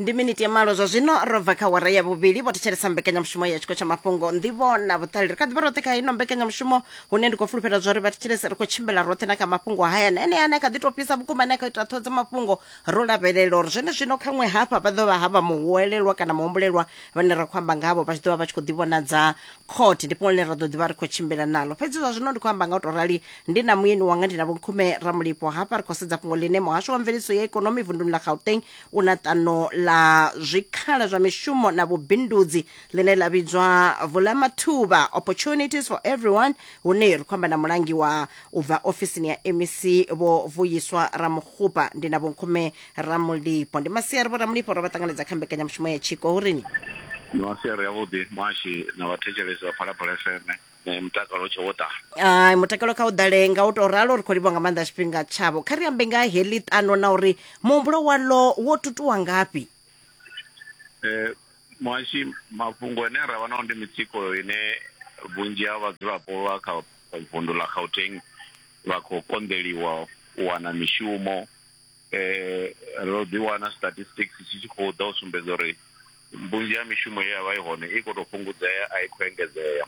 ndi miniti ya malo zwa zwino ro bva kha wara ya vhuvhili vho thetshelesa mbekanyamushumo ya tshiko tsha mafhungo ndivho na vhuṱali ri kha ḓivha roṱhe kha ino mbekanyamushumo hune ndi khou fulufhela zwa uri vha thetshelese ri khou tshimbila roṱhe na kha mafhungo haya na ene ane a kha ḓi tou fhisa vhukuma ane a kha ita ṱhoho dza mafhungo ro lavhelela uri zwene zwino khaṅwe hafha vha ḓo vha ha vha muhuwelelwa kana muhumbulelwa vhane ra khou amba ngavho vha tshi ḓo vha vha tshi khou ḓivhonadza khothe ndi fhungo ḽine ra ḓo ḓivha ri khou tshimbila nalo fhedzi zwa zwino ndi khou amba nga u tou rali ndi na muyeni wanga ndi na vhonkhume ramulipo hafha ri khou sedza fhungo ḽine muhasho wa mveledziso ya ikonomi vunduni ḽa gauteng u na ṱano ḽa zwikhala zwa mishumo na vhubindudzi ḽine ḽa vhidzwa vulamathuba opportunities for everyone hune ri khou amba na mulangi wa u bva ofisini ya mec vho vuyiswa ramukhupa ndi na vhonkhume ramulipo ndi masiari vho ramulipo ro vha ṱanganedza kha mbekanyamushumo ya tshiko hurini ni masiari avhuḓi muhashi na vhathetshelesi vha phalaphala fm Eh, mutakalo u tshe wo ḓala Ah, mutakalo kha u ḓale nga u tou ralo ri khou livha nga maanḓa tshifhinga tshavho kha ri ambe nga heḽi ṱano na uri muhumbulo walo wo tutuwa ngafhi Eh, muhashi mafhungo ane ra vha nao ndi mitsiko ine vhunzhi ha vhadzulapo vha kha vundu ḽa gauteng vha khou konḓeliwa u wana mishumo eh ro ḓi wana statistics tshi tshi khou ḓa u sumbedza uri vhunzhi ha mishumo ye ya vha i hone i khou tou fhungudzea a i khou engedzea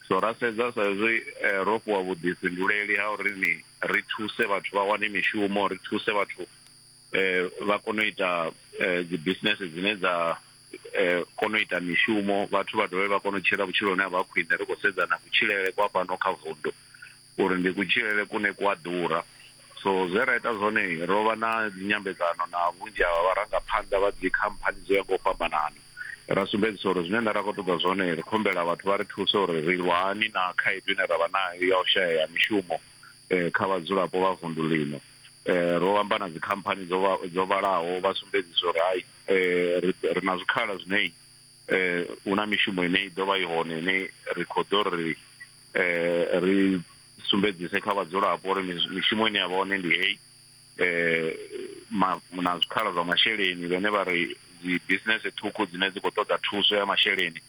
so ra sedza sa izwi eh, ro fhiwa vhuḓifhinduleli ha uri ni ri thuse vhathu vha wane mishumo ri thuse vhathu eh vha kone u ita eh, dzi business dzine dza eh kone u ita mishumo vhathu vha dovhe vha kone u tshila vhutshiloni ha vha khwine ri khou sedza na kutshilele kwa fhano kha vundu uri ndi kutshilele kune ku a ḓura. So zwe ra ita zwone, ro vha na dzinyambedzano na vhunzhi ha vharangaphanḓa vha dzikhamphani dzo ya nga u fhambanana, ra sumbedzisa uri zwine nṋe nda khou ṱoḓa zwone ri khou humbela vhathu vha ri thuse uri ri lwa hani na khaedu ine ra vha nayo ya u shaya ha mishumo kha vhadzulapo vha vunḓu ḽino. Ro amba na dzikhamphani dzo dzo vhalaho vha sumbedzisa uri hai ri ri na zwikhala zwine hu na mishumo ine i ḓo vha i hone ine ri khou ḓo ri. eh ri sumbedzise kha vhadzulapo uri mishumo ine ya vha hone ndi heyi eh na zwikhala zwa masheleni vhane vha ri dzi business ṱhukhu dzine dzi khou ṱoḓa thuso ya masheleni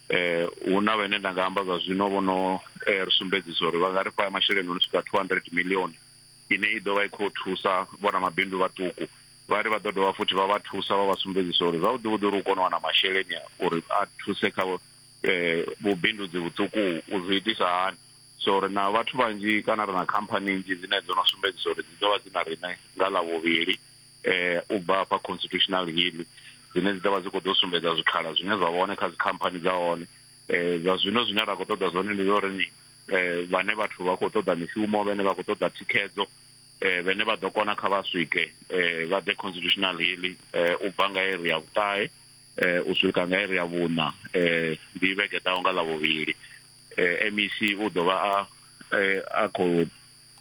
eh hu na vhane nda nga amba zwa zwino vho no eh, ri sumbedzisa uri vha nga ri fha masheleni no swika 200 million ine i ḓovha i khou thusa vhona mabindu vhaṱuku vha ri vha ḓo dovha futhi vha vha thusa vha vha sumbedzisa uri zwavhuḓi vhuḓi uri u kone u wana masheleni uri a thuse kha um vhubindudzi vhuṱuku u zwi itisa hani so ri na vhathu vhanzhi kana ri na khamphani nnzhi dzine dzo no sumbedzisa uri dzi ḓo vha dzi na riṋe nga ḽa vhuvhili um u bva hafha constitutional hill dzine dzi ḓo vha dzi khou ḓo sumbedza zwikhala zwine zwa vha hone kha dzikhamphani dza hone um zwa zwino zwine ra khou ṱoḓa zwone ndi zwa uri ni um vhane vhathu vha khou ṱoḓa mishumo vhane vha khou ṱoḓa thikhedzo um vhene vha ḓo kona kha vha swike um vha ḓe constitutional hill um u bva nga iri ya vhuṱahe u swika nga iri ya vhuṋa ndi vhege ḓaho nga ḽavhuvhili mec u ḓo vha a a khou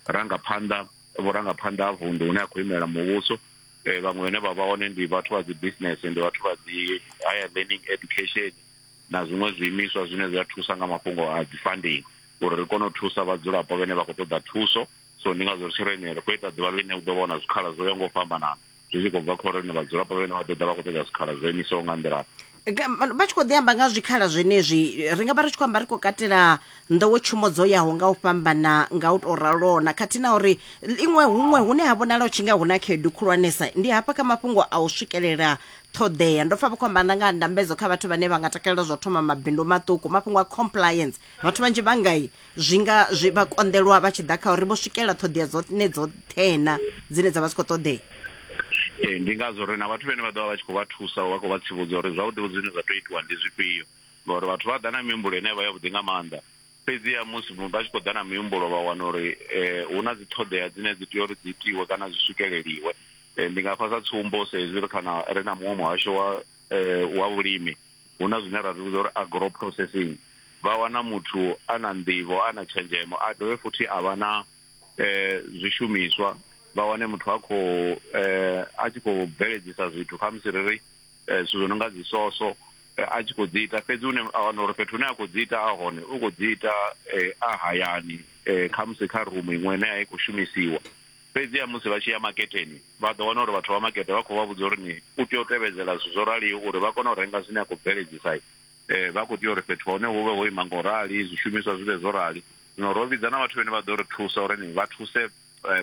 ranga phanḓa vhurangaphanḓa ha vunḓu hune a khou imela muvhuso vhaṅwe vhane vha vha hone ndi vhathu vha dzi business ndi vhathu vha dzi higher learning education na zwiṅwe zwiimiswa zwine zwi a thusa nga mafhungo a dzi funding uri ri kone u thusa vhadzulapo vhane vha khou ṱoḓa thuso so ndi ngazwo ri tshi ri ene ri khou ita ḓuvha ḽine u ḓo vha hu na zwikhala zwo yaho nga u fhambanana zwi tshi khou bva kha uri ni vhadzulapo vhene vha ḓo ḓa vha khou ṱoḓa zwikhala zwo imisaho nga nḓila vha tshi khou ḓi amba nga zwikhala zwenezwi ri nga vha ri tshi khou amba ri khou katela nḓowetshumo dzo yaho nga u fhambana nga u tou ralona khathihi na uri iṅwe huṅwe hune ha vhonala u tshi nga hu na khaedu khulwanesa ndi hafha kha mafhungo a u swikelela ṱhoḓea ndo pfa vha khou amba na nga ndambedzo kha vhathu vhane vha nga takalela zwa thoma mabindu maṱuku mafhungo a compliance vhathu vhanzhi vha ngai zwi nga zwi vha konḓelwa vha tshi ḓa kha uri vho swikelela ṱhoḓea dzone dzoṱhena dzine dza vha zwi khou ṱoḓea ee ndi ngazwo ri na vhathu vhene vha ḓo vha vha tshi khou vha thusa vha khou vha tsivhudza uri zwavhuḓivhuḓi zwine zwa tou itiwa ndi zwifhio ngauri vhathu vha ḓa na mihumbulo ine vha yavhuḓi nga maanḓa fhedziha musi vha tshi khou ḓa na mihumbulo vha wana uri um hu na dzi ṱhoḓea dzine dzi tea uri dzi itiwe kana zwi swikeleliwe um ndi nga fha sa tsumbo sa hezwi ri khana ri na muṅwe muhasho wa um wa vhulimi hu na zwine ra zwi vhidza uri agro processing vha wana muthu a na nḓivho a na tshenzhemo a dovhe futhi a vha na um zwishumiswa vha wane muthu a khou um a tshi khou bveledzisa zwithu kha musi ri ri um zwithu zwo no nga dzisoso a tshi khou dzi ita fhedzi une a wana uri fhethu hune a khou dzi ita a hone u khou dzi ita a hayani um khamusi kha rumu iṅwe ine a i khou shumisiwa Fhedziha musi vha tshi ya makhetheni, vha ḓo wana uri vhathu vha makete vha khou vha vhudza uri ni u tea u tevhedzela zwithu zwo raliho uri vha kone u renga zwine a khou bveledzisa. Vha khou tea uri fhethu ha hone hu vhe ho ima nga u rali, zwishumiswa zwi vhe zwo rali. Zwino ro vhidza na vhathu vhane vha ḓo ri thusa uri ni vha thuse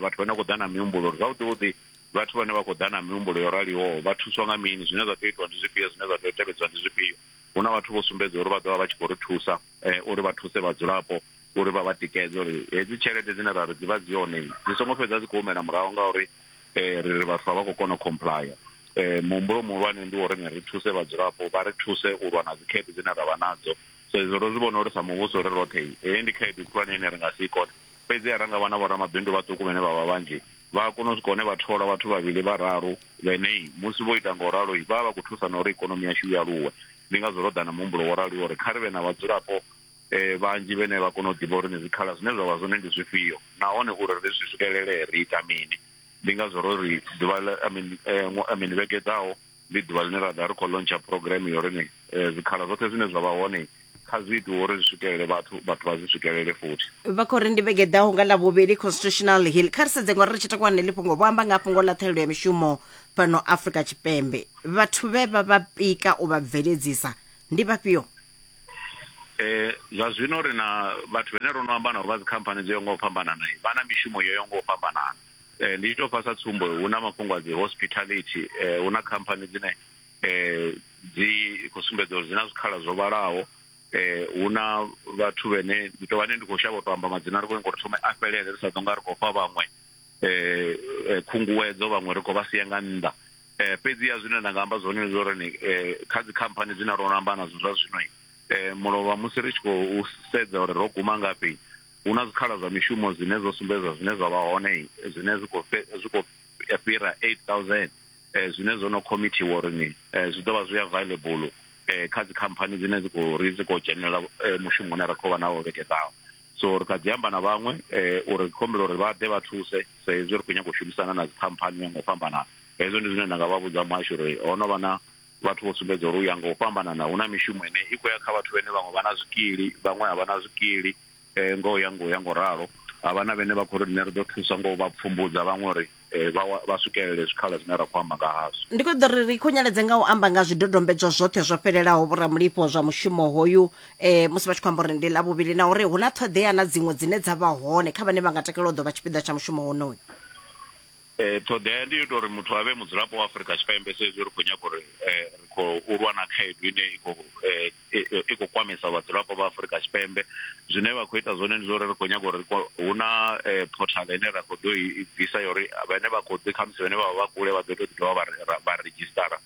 vhathu vhane vha khou ḓa na mihumbulo uri zwavhuḓi-vhuḓi vhathu vhane vha khou ḓa na mihumbulo yo raliho vha thuswa nga mini, zwine zwa tea u itiwa ndi zwifhio, zwine zwa tea u tevhedzwa ndi zwifhio. Hu na vhathu vho sumbedza uri vha ḓo vha vha tshi khou ri thusa. uri vha thuse vhadzulapo uri vha vha tikedze uri hedzi tshelede dzine ra ri dzi vha dzi yone dzi songo fhedza dzi khou humela murahu ngauri um ri ri vhathu a vha khou kona u complya um muhumbulo muhulwane ndi wo rine ri thuse vhadzulapo vha ri thuse u lwa na dzikhaedu dzine ra vha nadzo so izwo ro zwi vhona uri sa muvhuso ri roṱhe heyi ndi khaedu khulwane ine ri nga si i kone fhedzi a ra nga vha na vhoramabindu vhaṱuku vhane vha vha vhanzhi vha a kona u swika hune vha thola vhathu vhavhili vhararu vhene musi vho ita nga u ralo vha vha vha khou thusana uri ikonomi yashu i aluwe ndi ngazwo ro ḓa na muhumbulo wo raliho uri kha ri vhe na vhadzulapo um vhanzhi vhene vha kona u ḓivha uri ni zwikhala zwine zwa vha zwone ndi zwifhio nahone uri ri zwi swikelele ri ita mini ndi ngazwo ro ri ḓuvha I mean vhege ḓaho ndi ḓuvha ḽine ra ḓa ri khou lontsha program yo rini eh, zwikhala zwoṱhe zwine zwa vha hone kha zwi itiwe uri zwi swikelele vhathu vhathu vha zwi swikelele futhi vha khou ri ndi vhege ḓaho nga ḽa vhuvhili constitutional hill kha ri sedze ngori ri tshi takuwa neḽi fhungo vho amba nga fhungo ḽa ṱhahelelo ya mishumo fhano afrika tshipembe vhathu vhe vha vha pika u vha bveledzisa ndi vhafhio eh zwa zwino ri na vhathu vhene ro no amba navho vha dzikhamphani dzo yo nga u fhambanana vha na mishumo yo yo nga u fhambanana eh, ndi tshi tou fha sa tsumbo hu na mafhungo a dzi hospitality eh, hu na khamphani dzine eh, dzi khou sumbedza uri dzi na zwikhala zwo vhalaho eh hu na vhathu vhene ndi tou vhane ndi khou shavha u tou amba madzina ri khou nyanga uri thome a fhelele ri sa ḓo nga ri khou fha vhaṅwe eh, eh khunguwedzo vhaṅwe ri khou vha sia nga nnḓa eh fhedzi ya zwine nda nga amba zwone ndi uri ni eh, kha dzi khamphani dzine ro amba nadzo zwa zwino eh mulovha musi ri tshi khou sedza uri ro guma ngafhi hu na zwikhala zwa mishumo zwine zwo sumbedza zwine zwa vha hone zwine zwi khou zwi khou fhira 8000 eh, zwine zwo no khomithiwa uri ni eh, zwi ḓo vha zwi available eh, kha dzikhamphani dzine dzi khou ri dzi khou dzhenelela eh, mushumo une ra khou vha nawo vhege ḓaho so ri kha dzi amba na vhaṅwe eh, uri khombela uri vha ḓe vha thuse sa hezwi ri khou nyanga u shumisana na dzikhamphani nga u fhambanana hezwo ndi zwine nda nga vha vhudza muhasho uri ho no vha na Vhathu vho sumbedza uri u ya nga u fhambanana hu na mishumo ine i khou ya kha vhathu vhane vhaṅwe vha na zwikili, vhaṅwe a vha na zwikili ngo ya ngo ya ngo ralo. Ha vha na vhane vha khou ri riṋe ri ḓo thusa ngo vha pfumbudza vhaṅwe uri vha vha swikelele zwikhala zwine ra khou amba nga hazwo. Ndi khou ḓo ri ri khunyeledze nga u amba nga zwidodombedzwa zwoṱhe zwo fhelelaho vhoramulifho zwa mushumo hoyu musi vha tshi khou amba uri ndi ḽa vhuvhili na uri hu na ṱhoḓea na dziṅwe dzine dza vha hone kha vhane vha nga takalela u ḓo vha tshipiḓa tsha mushumo wonoyu. Ṱhoḓea ndi yo ita uri muthu a vhe mudzulapo wa Afurika Tshipembe sa izwi ri khou nyaga uri ri khou lwa na khaedu ine i khou i khou kwamesa vhadzulapo vha Afurika Tshipembe. Zwine vha khou ita zwone ndi zwa uri ri khou nyaga uri hu na phothaḽa ine ra kho ḓo i bvisa ya uri vhane vha kho ḓi khamusi vhane vha vha kule vha ḓo tea u ḓi dovha vha ri vha redzhisṱara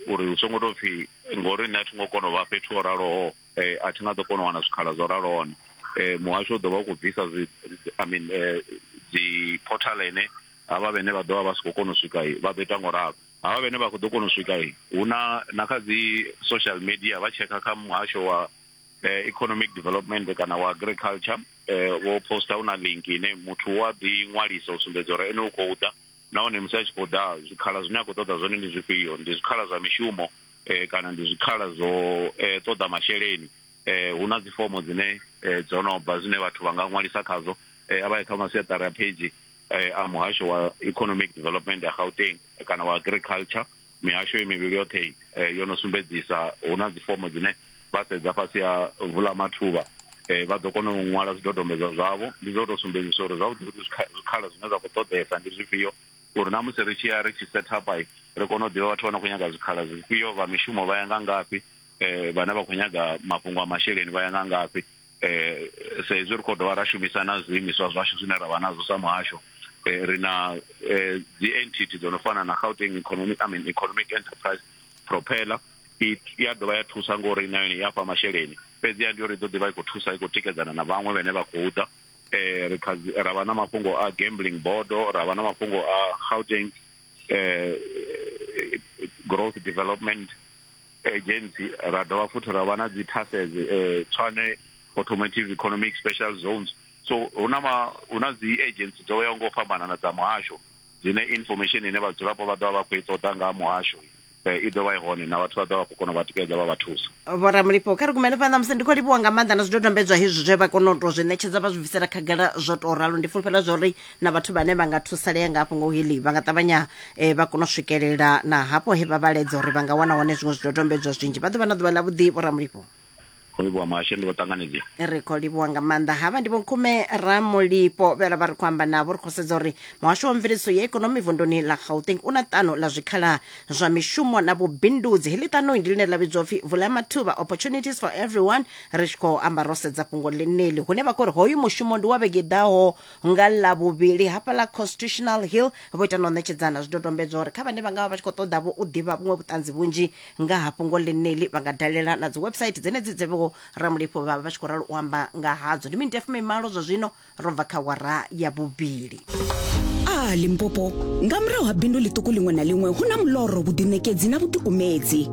uri hu songo tou pfhi ngori nṋe a thi ngo kona u vha fhethu ho raloho. eh, a thi nga ḓo kona u wana zwikhala zwo raloho hone eh, muhasho u ḓo vha u khou bvisa i mean eh, dzi portal ene havha vhene vha ḓo vha vha si khou kona u swika vha ḓo ita ngo ralo havha vhene vha khou ḓo kona u swika hu na na kha dzi social media vha tshekha kha muhasho wa eh, economic development kana wa agriculture eh, wo posta hu na link ine muthu wa ḓi ṅwalisa u sumbedza uri ene u khou ḓa nahone musi a tshi khou ḓa zwikhala zwine a khou ṱoḓa zwone ndi zwifhio ndi zwikhala zwa mishumo eh, kana ndi zwikhala zwo eh, ṱoḓa masheleni eh, hu na dzifomo dzine eh, dzo no bva zwine vhathu vha nga ṅwalisa khadzo eh, a vha ye kha masiaṱari a phage eh, a muhasho wa economic development ya gauteng kana wa agriculture mihasho mivhili yoṱhe eh, yo no sumbedzisa hu na dzifomo dzine vha sedza fhasi ya vula mathuvha eh, vha ḓo kona u ṅwala zwidodombedzwa zwavho ndi zwo tou sumbedzisa uri zwavhuḓi vhuḓi zwikhala zwine zwa khou ṱoḓesa ndi zwifhio uri na musi ri tshi ya ri tshi set up i ri kone u ḓivha vhathu vha no khou nyaga zwikhala zwifhio vha mishumo vha ya nga ngafhi eh vhane vha khou nyaga mafhungo a masheleni vha ya nga ngafhi eh sa izwi ri khou dovha ra shumisa na zwiimiswa zwashu zwine ra vha nazwo sa muhasho eh ri na eh dzi entity dzo no fana na Gauteng economic i mean economic enterprise propeller i ya dovha ya thusa ngori na yone ya fha masheleni fhedzi ya ndi uri i ḓo ḓivha i khou thusa i khou tikedzana na vhaṅwe vhane vha khou ḓa eh ri kha ra vha na mafhungo a gambling bodo ra vha na mafhungo a Gauteng eh growth development agency ra dovha futhi ra vha na dzi taxes eh tshwane automotive economic special zones so huna ma huna dzi agency dzo yaho ngo fhambanana dza muhasho dzine information ine vhadzulapo vha ḓovha vha khou i ṱoḓa nga muhasho eh, i ḓo vha i hone na vhathu vha ḓo vha khou kona u vha tikedza vha vha thusa vhoramulifho kha ri kumele phanḓa musi ndi khou livhuwa nga maanḓa na zwidodombedzwa hezwi zwe vha kona u tou zwi ṋetshedza vha zwi bvisela khagala zwo tou ralo ndi fulufhela zwa uri na vhathu vhane vha nga thusalea nga hafho ngo hili vha nga ṱavhanya eh, vha kona u swikelela na hafho he vha vhaledza uri vha nga wana hone zwiṅwe zwidodombedzwa zwinzhi vha ḓo vha na ḓuvha ḽavhuḓi vhoramulifho khou livhuwa muhasho ndi vho ṱanganedzea ri khou livhuwa nga maanḓa havha ndi vhonkume ramulipo vhela vha ri khou amba navho ri khou sedza uri muhasho wa mveledziso ya ikonomi vunduni ḽa gauteng u na ṱano ḽa zwikhala zwa mishumo na vhubindudzi heḽi ṱanoi ndi ḽine ḽa vhidzwa upfi vula mathuba opportunities for everyone ri tshi khou amba ro sedza fhungo ḽeneḽi hune vha khou ri hoyu mushumo ndi wa vhege ḓaho nga ḽa vhuvhili hafha ḽa constitutional hill vho ita na u ṋetshedzana zwidodombedzwa uri kha vhane vha nga vha vha tshi khou ṱoḓa vho u ḓivha vhuṅwe vhuṱanzi vhunzhi nga ha fhungo ḽeneḽi vha nga dalela na dzi website dzenedzi dze vho ramulifho vha vha vha tshi khou ralo u amba nga hadzo ndi miniti ya fumimalo zwa zwino ro bva kha wara ya vhuvhili a limpopo nga murahu ha bindu ḽiṱuku ḽiṅwe na ḽiṅwe hu na muloro vhuḓiṋekedzi na vhuḓikumedzi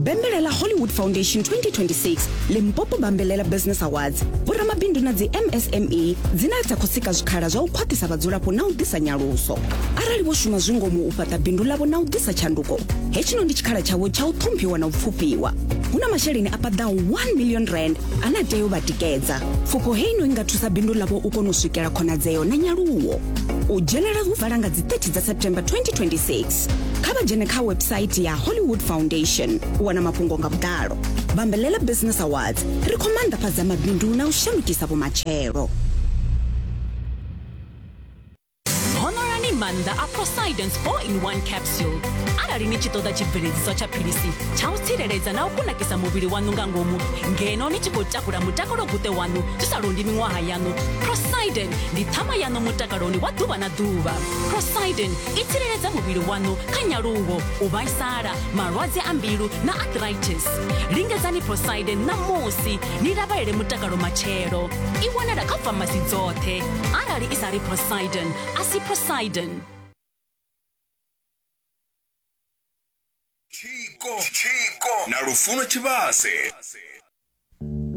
bambelela hollywood foundation 2026 limpopo bambelela business awards vhoramabindu na dzi msme dzine dza khou sika zwikhala zwa u khwaṱhisa vhadzulapo na u ḓisa nyaluso arali vho shuma zwingomu u fhaṱa bindu ḽavho na u ḓisa tshanduko hetsho ndi tshikhala tshavho tsha u ṱhomphiwa na u pfufhiwa hu na masheleni a paḓaho 1 million rand ane a tea u vha tikedza pfufho heino i nga thusa bindu ḽavho u kona u swikela khonadzeo na nyaluwo u dzhenela hu vala nga dzi 30 dza september 2026 kha vha dzhene kha website ya hollywood foundation u wana mafhungo nga vhuḓalo bambelela business awards ri khou maanḓafhadza mabindu na u shandukisa vhumatshelo honorani maanḓa a poseidon 4 in 1 capsule arali ni tshi ṱoḓa tshibveledziswa tsha philisi tsha u tsireledza na u kunakisa muvhili waṋu nga ngomu ngeno ni tshi khou takula mutakalo guṱe waṋu zwi sa londi miṅwaha yaṋu poseidon ndi ṱhama yaṋu mutakaloni wa ḓuvha na ḓuvha poseidon i tsireledza muvhili waṋu kha nyaluwo u vhaisala malwadze a mbilu na arthritis lingedzani poseidon ṋamusi ni lavhelele mutakalo matshelo i wanala kha famasi dzoṱhe arali i sa ri poseidon a si poseidon tshiko na lufuno tshivhase